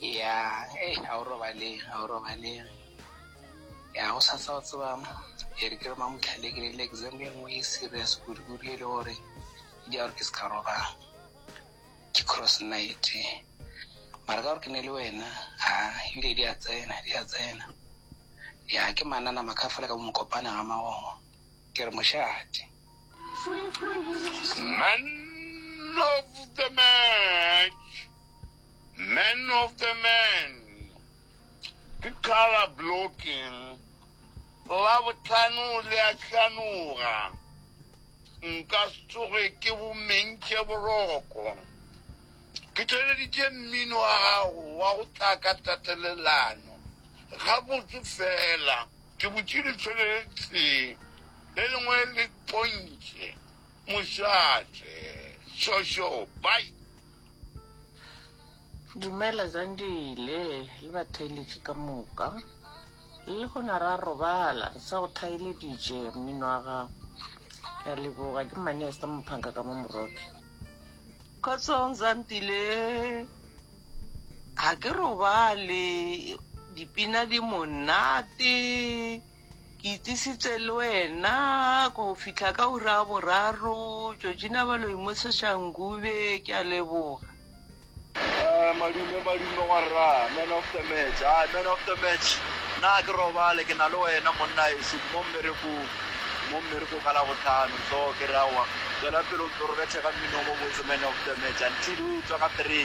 ya hey ga o robale ga o robale ya go sa tsa o tseba e re ke re mamotlhale ke le exam e nngwe e serious kudu-kudu e le gore di a gore ke se ka robala ke cross night mara ka gore ke ne le wena a ebile di a tsena di a tsena ya ke manana makafela ka mokopana ga magogo ke re mošate man of the match Man of the man ke colour blocking labohlano le a hlanoga nka se tsoge ke bomentše boroko ke theleditše mmino wa gago wa go tla ka tatelelano gabotse fela ke butše letšho le tee le lengwe le pontše mošate šošo bai Dumela Zandile le batheeletši ka moka. Le gona ra robala re sa go thaeleditše mmino wa gago. Ke a leboga ke Manesta Mophanka ka mo Moroki. Kgotsong Zandile, ga ke robale dipina di monate. Ke itisitse le wena go fihla ka ura ya boraro. Georgina ba lo imoseša Ngube, ke a leboga. Eh, madume madume wa rra man of the match a man of the match na ke robale ke na le wena monna eso mo mmerekong mo mmerekong ka la botlhano so ke rawa tswela pele o ntse re bethe ka mmino mo botse man of the match until o tswa ka three